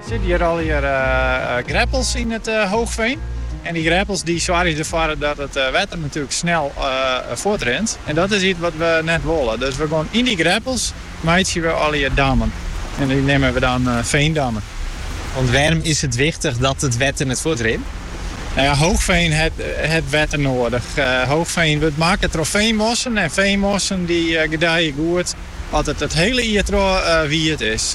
Sit hjir allegear greppels yn it hoogfean. En dy greppels dy soargje derfoar dat it wetter natuerlik snel fuortrint. En dat is iets wat we net wolle. Dus we geane yn dy greppels meitsje we allegear dammen. En dy neame we dan feandammen. Want wêrom is it wichtich dat it wetter net fuortrint? No ja, hoogfean hat wetter noadich. Hoogfean wurdt makke troch feanmossen. En feanmossen dy gedije goed as it it hiele jier troch wiet is.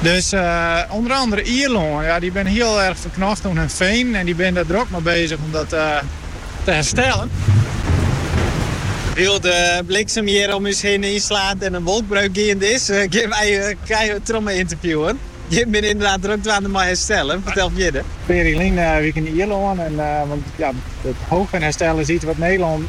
Dus ûnder andere Ierlân, ja, dy binne hiel erg ferknocht oan hun fenen en dy binne dêr drok mei bezich om dat te herstellen. Wylst de bliksem hjir om ús hinne ynslaat en in wolkbreuk geande is, gean wy gewoan troch mei ynterviewen. Jim binne ynderdaad drok dwaande mei herstellen, fertel fierder. Ferline wike yn Ierlân, want ja, it hoogfean herstellen is iets wat Nederlân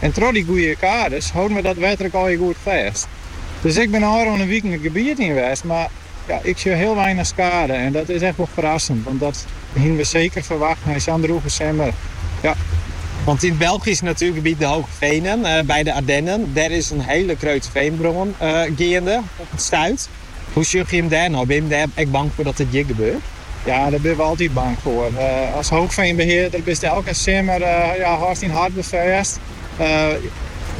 En troch dy goede kades hâlde we dat wetter eigenlik ek goed fêst. Dus ik bin ôfrûne wiken it gebiet yn west, mar ja, ik sjoch hiel weinich skade en dat is echt wol ferrassend, want dat hiene we seker ferwacht nei sa'n drûge simmer. Ja. Want yn it Belgysk natuergebiet De Hoge Venen by de Ardennen, dêr is in hiele grutte feanbrân geande op it stuit. Hoe sjogge jim dêr nei? Binne jim dêr ek bang foar dat it hjir gebeurt? Ja, dêr binne we altyd bang foar. As hoogfeanbehearder bist elke simmer ja hâldst dyn hart wer fêst.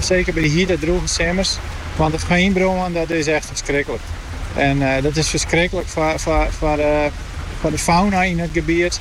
Seker by de hite drûge simmers. Want in feanbrân, dat is echt ferskriklik. En dat is ferskriklik foar de fauna yn it gebiet.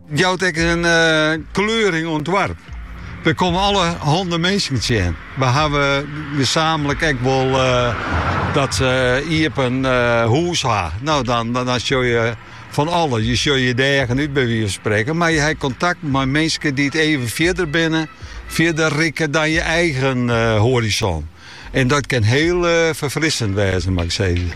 Jout ek in kleuring oan it doarp. Je komme allerhande minsken tsjin. We hawwe gesamentlik ek wol dat se iepen hûs ha. No, dan, dan sjogge je fan alles. Je sjogge je de eagen út by wize fan sprekken. Mar je ha kontakt mei minsken dy't even fierder binne, fierder rikke dan je eigen eh, horizon. En dat kin hiel eh, ferfrissend wêze, moat ik sizze.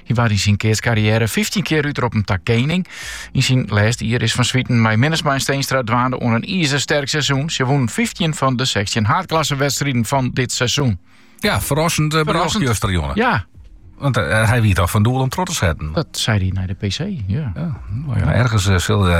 Hy waard yn syn keatskarriêre 15 kear útroppen ta kening. Yn syn lêste jier is Van Swieten mei Minnesma en Steenstra dwaande oan in izersterk seizoen. Se wûnen 15 fan de 16 haadklassewedstriden fan dit seizoen. Ja, ferrassend eh, berjocht juster, jonge. Ja, want eh, eh, hy wie toch fan doel om troch te setten. Dat sei hy nei de PC, ja. ja, no ja ergens eh, sille